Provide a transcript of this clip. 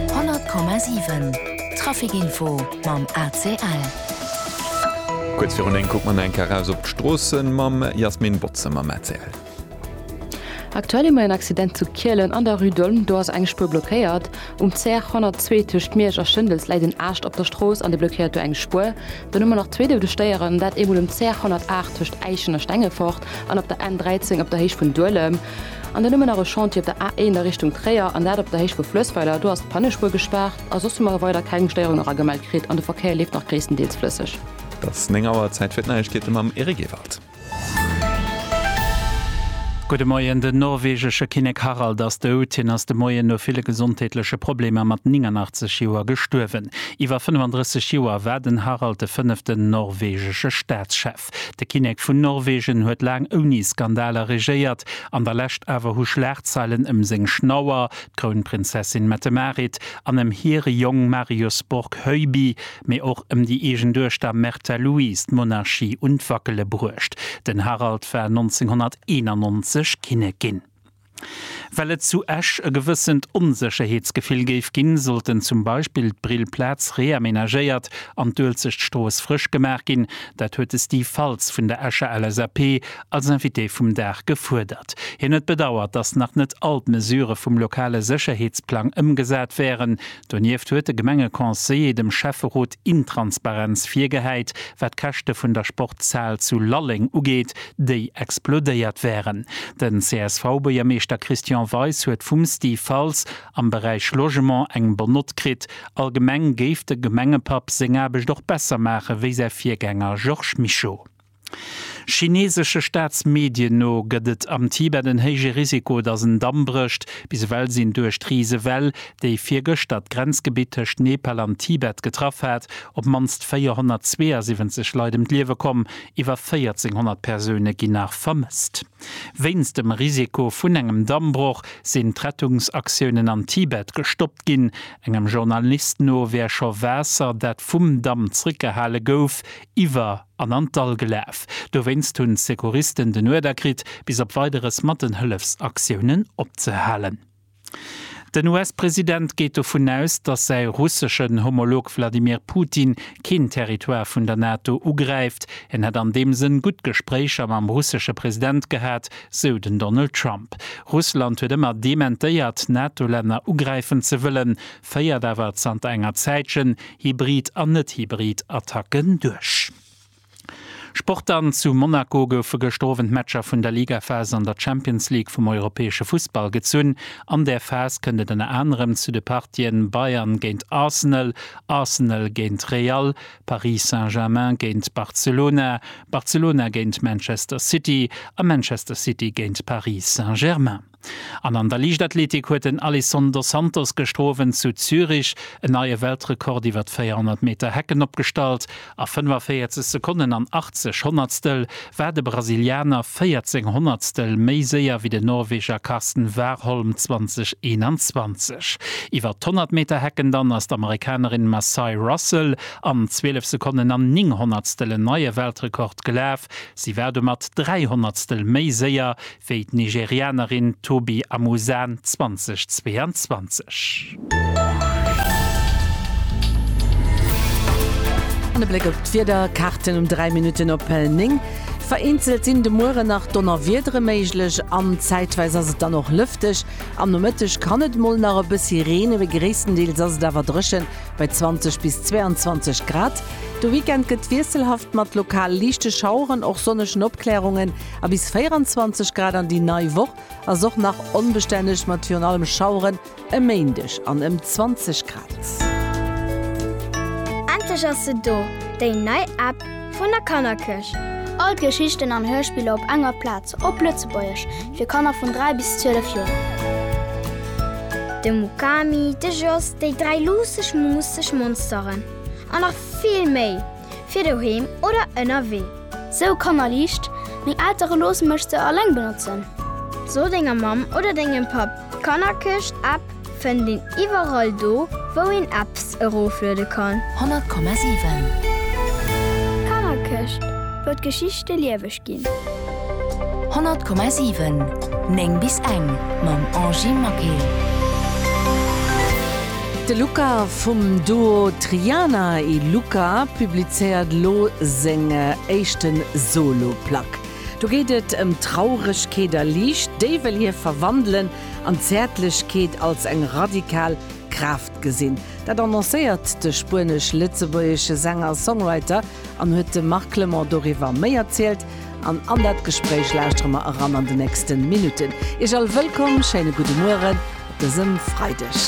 100,7 Traficinfo mam ACL. Kuerz virun 9 kucke mer eng Kéier eraus op d'Stroossen mam Jasmin Botze mam ACL. Aktuell hu mer en Accident zu Kielen an der Rue d'Olm. Do ass eng Spuer blockéiert. Um CR 102 tëscht Miersch a Schëndels läit en Aascht op der Strooss an dee blockéiert do eng Spuer. Dann hu mer nach zwee Doudestéieren, dat eemol um CR 108 tëscht Äischen a Stengefort an op der N 13 op der Héicht vun Duelem. An dann hu mir nach e Chantier op der A1 a Richtung Tréier, an dat op der Héicht vu Flëssweiler. Do ass d'Pannespuer gespaart a soss hu mer weider keng Stéierung era gemellt kritt an de Verkéier leeft nach gréisstendeels flësseg. Et ass 9 Auer, Zäit fir d'Neiegkeete mam Eric Ewald. Gudde Moien, Den norwegesche Kinnek Harald ass dout. Hien ass de Moien no ville gesondheetleche Problemer mat 89 Joer gestuerwen. Iwwer 35 Joer war den Harald de fënneften norwegesche Staatschef. De Kinnek vun Norwegen huet laang ouni Skandaler regéiert, an der Lescht awer hu Schlagzeilen ëm seng Schnauer, d'Krounprinzessin Mette-Marit, an ëm hire Jong Marius Borg Høiby, mee och ëm déi eegen Duechter Märtha Louise d'Monarchie un d'Wackele bruecht. Den Harald war 1991 Kinnek ginn. Well et zu Esch e gewëssent Onsécherheetsgefill géif ginn, sollten zum Beispill d'Brill Plaz reamenagéiert an d'Uelzecht Strooss frësch gemaach ginn. Dat huet de Steve Faltz vun der Escher LSAP als Invité vum Dag gefuerdert. Hien huet bedauert, datt nach net all d'Mesure vum lokale Sécherheetsplang ëmgesat wären. Donieft huet de Gemengeconseiller dem Schäfferot Intransparenz virgehäit, wat d'Käschte vun der Sportshal zu Lalleng ugeet, déi explodéiert wären. Den CSV-Buergermeeschter Christian Weis huet vum Steve Faltz am Beräich Logement eng Bonne note kritt. Allgemeng géif de Gemengepapp seng Aarbecht och besser maache wéi säi Virgänger Georges Mischo. Chineesesche Staatsmedien no gëtt et am Tibet en héije Risiko, datt en Damm brécht. Bis ewell sinn duerch d'Risewell, déi virgëschter d'Grenzgebitt tëscht Nepal an Tibet getraff hat, op d'mannst 472 Leit ëm d'Liewe komm. Iwwer 1400 Persoune ginn nach vermësst. Wéinst dem Risiko vun engem Dammbroch sinn d'Rettungsaktiounen am Tibet gestoppt ginn. Engem Journalist no wär scho Waasser, dat vum Damm zréckgehale gouf, iwwer. an an d'Dall gelaf. Dowéinst hunn d'Secouristen den Uerder kritt, bis op Weideres mat den Hëllefsaktiounen opzehalen. Den US-President geet dovun aus, datt säi russeschen Homolog Wladimir Putin keen Territoire vun der NATO ugräift. En hätt an deem Sënn gutt Gespréicher mam russesche President gehat, sou den Donald Trump. Russland huet ëmmer dementéiert, NATO-Länner ugräifen ze wëllen. féiert awer zanter enger Zäitchen hybrid an net-hybrid Attacken duerch. Sport An zu Monaco goufe gëschter Owend d'Matcher vun der Ligaphas an der Champions League vum europäesche Fussball gezunn. An där Phas kënnt et ënner anerem zu de Partien Bayern géint Arsenal, Arsenal géint Real, Paris Saint-Germain géint Barcelona, Barcelona géint Manchester City a Manchester City géint Paris Saint-Germain. An an der Liichtathletik huet den Alisson dos Santos gëschter Owend zu Zürich en neie Weltrekord iwwer d'Véierhonnert Meter Hecken opgestallt. A 45 Sekonnen an 80 Honnertstel war de Brasilianer 14 Honnertstel méi séier wéi den Norweger Karsten Warholm 2021. Iwwer d'Honnert Meter Hecken dann ass d'Amerikanerin Macye Russell an 12 Sekonnen an 9 Honnertstel en neie Weltrekord gelaf. Si war domat 3 Honnertstel méi séier wéi d'Nigerianerin Tobi Amusan 2022. An e Bléck op d'Wiederkaarten um 3 Minutten op 9, Vereenzelt sinn de Muere nach Donnerwiedere méiglech an zäitweis ass et dann och lëfteg. Am Nomëtteg kann et mol nach e bëssi reene, mee gréisstendeels ass et awer dréchen bei 20 bis 22 Grad. De Weekend gëtt wiesselhaft mat lokal liichte Schaueren, och sonnegen Opklärungen. A bis 24 Grad an déi nei Woch ass och nach onbestänneg mat virun allem Schaueren e Méindeg an ëm 20 Grad. Endlech ass se do, déi nei App vun der Kannerkierch! All d'Geschichten an Hörspiller op enger Plaz, op Lëtzebuergesch, fir Kanner vun 3 bis 12 Joer. De Mukami, de Jos, déi dräi luusseg, muusseg Monsteren a nach vill méi! fir doheem oder ënnerwee. Sou Kanner liicht, meng Eltere loosse mech se alleng benotzen. So denger Mamm oder dengem Papp, d'Kannerkëscht App fënnt een iwwerall do wou een Apps erofluede kann. 100,7. Kannerkëscht, wou d'Geschichte lieweg ginn. ginn. 100,7, 9 bis eng mam Angie Maquet. De Luca vum Duo Triana y Luca publizéiert elo seng éischte Solo-Plack. Do geet et ëm Trauregkeet a Liicht, déi wëll hie verwandelen an d'Zäertlechkeet als eng radikal Kraaft gesinn. Dat annoncéiert de spuenesch-lëtzebuergesche Sänger-Songwriter an huet de Marc Clement doriwwer méi erzielt. An an dat Gespréich lauschtere mer eran an de nächste Minutten. Iech all wëllkomm, schéine gudde Mueren op dësem Freideg.